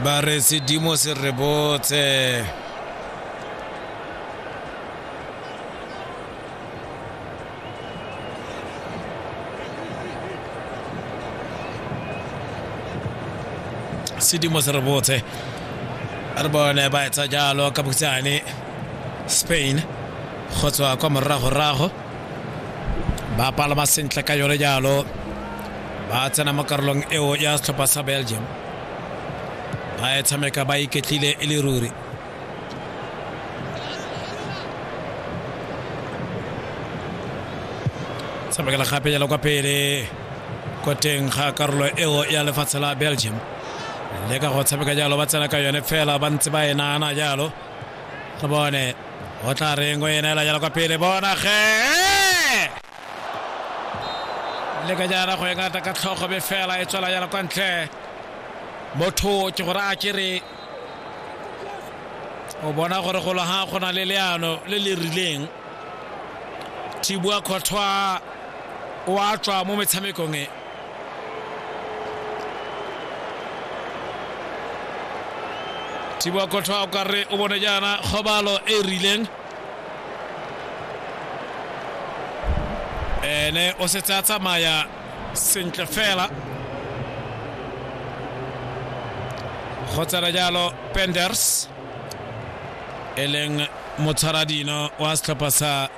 ba re sedimo se re botse sedimo se re botse re bone ba etsa jalo ka bokhutshwane spain go tswa kwa moragorago ba palama sentle ka yone jalo ba tsena mo karolong eo ya setlhopha sa belgium ba e tshameka ba iketlile e le ruri tshamekela gape jalo kwa pele ko teng ga karolo eo ya lefatshe la belgium le ka go tshameka jalo ba tsena ka yone fela ba ntse ba e naana jalo go bone o tla reng o ena ela jala kwa pele bona ge le ka jana go engata ka tlhogo be fela e tswela jala kwa ntle motho ke gore a kere o bona gore golo ga go na le leano le le rileng thibua kgothwa o a tswa mo metshamekong e thiboa kothoa o ka re o bone jaana kgobalo e e rileng ene o setse a tsamaya sentle fela go tsena jalo penders e leng motshwaradino wa setlhopha sa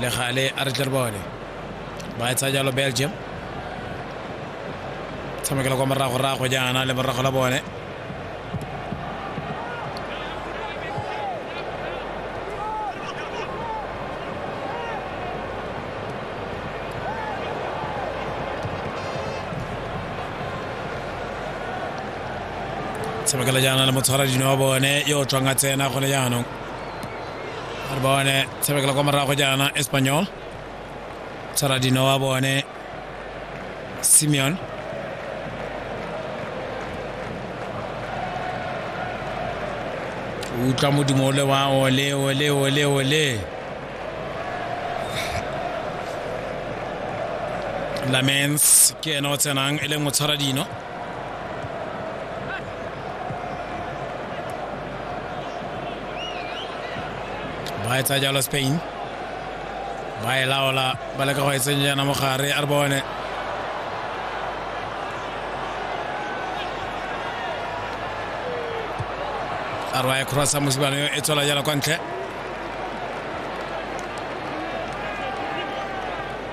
le gale a re tle re bone ba e tsaya jalo belgium tshamekela kwa moragorago jaana le morago la bone tshamekela jaana le motshwara dino wa bone yo o tswang a tsena gone jaanong re bone tshabekela kwa morago jaana espanyol charadino wa bone simeon utlwa modimo ole wa ole ole ole ole lamens ke ene o tsenang e leng o tshwara dino ba etsa jalo spain ba e laola ba leka go e tsenya yana mogare a re bone a re wa e crossa mosibano e tswela jalo kwa ntle